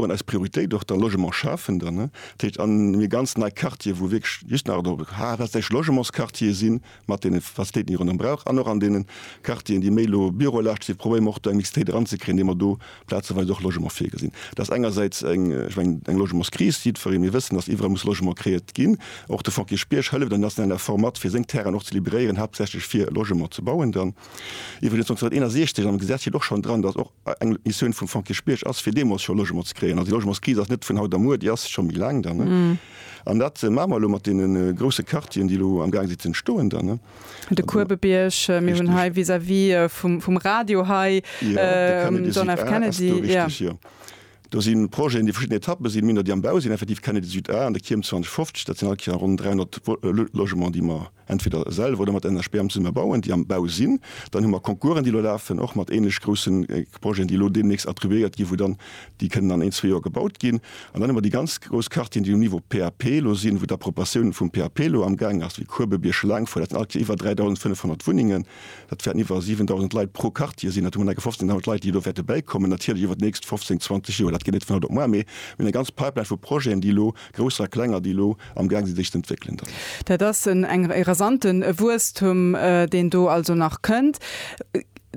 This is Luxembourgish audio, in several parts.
An eis Prioritéit och da Logement schafen dann, ne? Dat heescht an mir ganz nei Quartiere wou wierklech just nach do haaptsächlech Logementsquartiere si mat deene Facilitéiten, déi ee ronderëm brauch an och an deenen Quartieren, déi méi elo Bürolascht sinn, probéiere mer och do eng Mixitéit eranzekréien, indem mer do plazeweis och Logement virgesinn. Dat ass engersäits eng, ech mengen, eng Logementskris. Jiddweree mir wëssen, datt iwwerall muss Logement kreéiert ginn. Och de Fonds Kirchbierg hëlleft an deem nationalen Effort mat, fir seng Terrainen och ze liberéieren, haaptsächlech fir Logement ze bauen dann. Iwwregens 1961 am Gesetz steet och schonn dran, datt och eng Missioun vum Fonds Kierchbierg ass, fir deemools scho Logement ze kréien. Also déi Logementskris ass net vun haut a muer, déi ass scho méi laang dann. Ne? An dat maache mer elo mat deenen grousse Quartieren, déi elo am Gaang si ze entstoen dann. Ne? De Kuebebierg, mir hunn hei vis-à-vis vum, vum Radio hei, Ja, de Kennedy John F. Süd A ass Kennedy, do, ja. richteg, jo. Do si Projeten, déi verschidden Etappe sinn, méi nach déi am Bau sinn, effektiv Kennedy Süd A an de Kierm 2050, dat sinn all Kéier ronn 300 Wo, Lo, Logements, déi mer. entweder selwer oder mat enger SPAM zesumme bauen, déi am Bau sinn, dann hu mer Concoursen, déi elo lafen, och mat ähnlech grousse Projeten, déi elo deemnächst attribuéiert ginn, wou dann déi kënnen an een, zwee Joer gebaut ginn. An dann hu mer déi ganz grouss Quartieren, déi um Niveau PAP elo sinn, wou d'Approbatiounen vum PAP elo amgaang ass, wéi Kuebe, Bierschelaangfouer, dat sinn alleguer iwwer 3.500 Wunnengen, dat wäerten iwwer 7.000 Leit pro Quartier sinn, dat hu mer alleguer 15.000 Leit, déi elo wäerte bäikommen, natierlech iwwer d'nächst 15, 20 Joer, dat geet net vun haut op muar, mee mir hunn eng ganz Pipeline vu Projeten, déi elo Grousser a klenger, déi elo am Gaang sinn, sech z'entwéckelen, dann. Dat ass en e rasante Wuesstum, deen do also nach kënnt.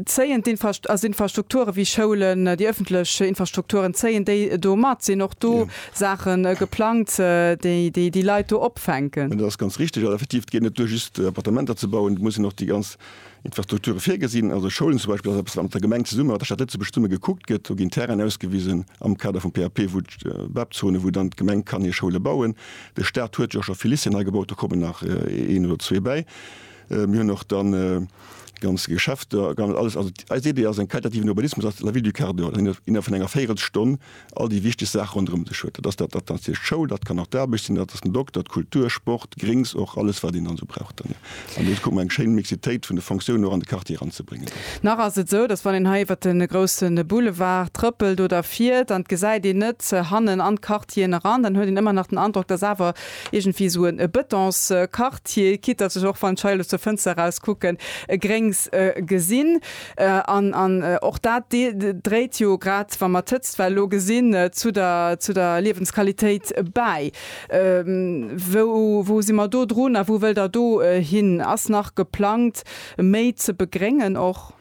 Zéien d'Infrast also Infrastrukture wéi Schoulen, déi ëffentlech Infrastrukturen, zéien déi do mat? Sinn och do Saache geplangt, déi déi déi Leit do opfänken? Dat ass ganz richtig. Effektiv, et geet net duer, just Appartementer ze bauen. Et muss een och déi ganz. Infrastrukture virgesinn, also Schoulen zum Beispill, ass eppes, wat mat der Gemeng zesummen, mat der Stad Lëtzebuerg zesummen gekuckt gëtt. Do ginn Terrainen ausgewisen am Kader vum PAP, wou d'BEP-Zone, wou dann d'Gemeng kann hir Schoule bauen. De Staat huet jo scho vill Lycéeën hei gebaut, do kommen nach een oder zwee bäi. Mir hunn och dann ganz Geschäfter, ganz alles. Also eis Idee ass eng qualitativen Urbanismus, ass La Ville du Quart d'Heure, innerhalb vun enger Véirelstonn all déi wichteg Saache ronderëm sech huet. Dat ass dat ass hir Schoul, dat kann och d'Aarbecht sinn, dat ass den Dokter, d'Kultur, Sport, Gréngs och, alles wat een dann esou brauch dann, jo. An do kucke mer eng schéin Mixitéit vun de Fonctiounen och an de Quartier eranzebréngen dann. Nach ass et esou, datt wann een hei iwwert de grousse Boulevard trëppelt oder fiert an et gesäit een net hannen an d'Quartieren eran, dann huet een ëmmer nach den Androck, dass awer iergendwéi esou e Betonsquartier, quitte dass ech och, wann ech hei elo zur Fënster eraus kucken, e Gréngs gesinn. An, an och dat dréit jo, grad wa mer d'Hëtztwell elo gesinn, zu der, zu der Liewensqualitéit bäi. Wou, wou si mer do drun a wou wëllt Der do hin? Ass nach geplangt méi ze begréngen och?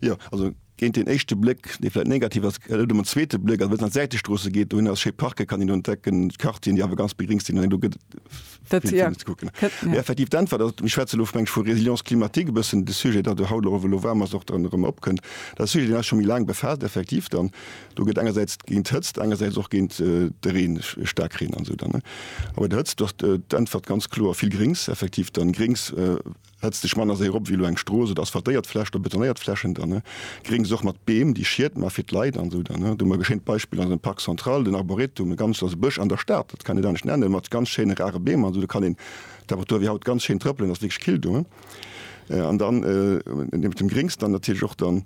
Jo, also géint deen éischte Bléck, dee vläicht negativ ass, gëtt et ëm en zweete Bléck. Also wa een an d'Säitestroosse geet, dohinner ass schéi Parke kann een entdecken, Quartieren, déi awer ganz begréngt sinn. An do gëtt et effektiv d'Äntwert ass, mir schwätzen elo vu Résilience climatique, e bëssen de Sujet, dat de haut elo waarm ass, och dann erëm opkënnt. Dat Sujet, deen eis scho méi laang befaasst, effektiv dann. Do gëtt engersäits géint d'Hëtzt, engersäits och géint de Reen, Staarkreen an esou dann. A bei der Hëtzt ass d'Äntwert ganz kloer, vill Gréngs, effektiv dann Gréngs. Setz dech manner séier op ewéi elo eng Strooss oder asphaltéiert Fläch oder betonéiert Flächen. Dann gréng suerg mat Beem, déi Schied ma fir d'Leit an esou. Dann hu mer e geschéint Beispill an esem Parc Central, den Arboretum, e ganz, also Bësch an der Stad, dat kann een net anescht nennen, mat ganz schéine rare Beem an esou. Do kann een d'Temperatur ewéi haut ganz schéin trëppelen, ass wierklech kill do. An dann niewent dem Gréngs dann natierlech och dann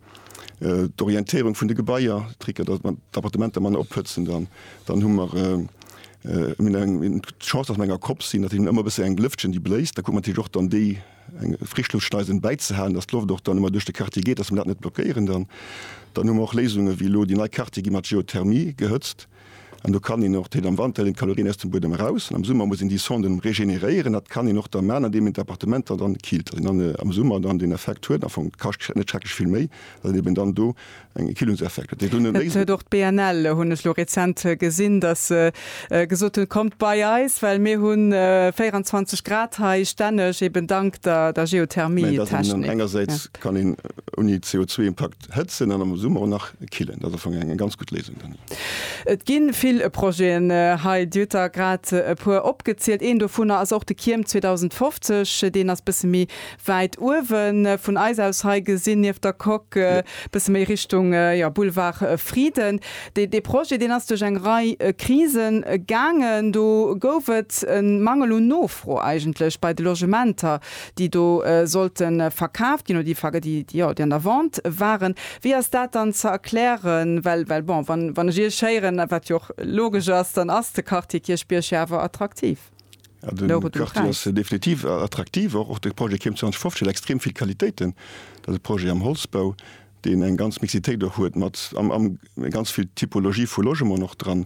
d'Orientéierung vun de Gebaier, Trick, datt mer d'Appartementer manner ophëtzen. Dann hu mer. D'Chance ass an enger Kopp sinn, datt een ëmmer e bësse eng Lëftchen déi bléist, da kuckt mer natierlech och dann déi eng Frischluftschneisen bäizehalen, datt d'Loft och dann ëmmer duerch de Quartier geet, datt mer dat net blockéieren dann. Dann hu mer och Léisungen, wéi elo déi nei Quartiere gi mat Geothermie gehëtzt an do kann een och, dat heet am Wanter hëlt een d'Kalorien aus dem Buedem eraus an am Summer muss een déi Sonden regeneréieren. Dat kann een och da maachen, andeem een d'Appartementer dann killt, datt een dann am Summer dann deen Effekt huet. Am Fong kascht net schrecklech vill méi, well een eben dann do Eng Erkillungseffekt huet. Dat huet och d'BNL, hunn ech lo rezent gesinn, datt se gesot hunn, kommt bei eis, well mir hu 24 Grad hei stänneg, eben dank der Geothermietechnik. Engersäits kann een ouni CO2-Impakt hëtzen an am Summer och nach killen. Dat ass am Fong eng ganz gutt Léisung dann. Et gi vill Projeten hei, Dir hutt der grad e puer opgezielt. Een dovunner ass och de Kierm 2050. Deen ass bësse méi Wäit uewen vun eis aus hei gesinn, nieft der Coque, bësse méi Richtung, jo, Boulevard Frieden. Dee Projet, deen ass duerch eng Rei Krisen gaangen. Do gouf et e Mangel un Nofro eigentlech bei de Logementer, déi do sollte verkaaft ginn, oder déi, déi, jo, déi an der Vente waren. Wéi ass dat dann ze erklären? Well, well bon, wann, wann ech Iech héieren, wat jo och logesch ass, dann ass de Quartier Kierchbierg jo awer attraktiv. Ja, den Loro Quartier ass äh, definitiv äh, attraktiv. Och, och de Projet Kim 2050 huet extrem vill Qualitéiten. Dat e Projet am Holzbau, deen eng ganz Mixitéit och huet, mat am, am ganz vill Typologie vu Logement och dran.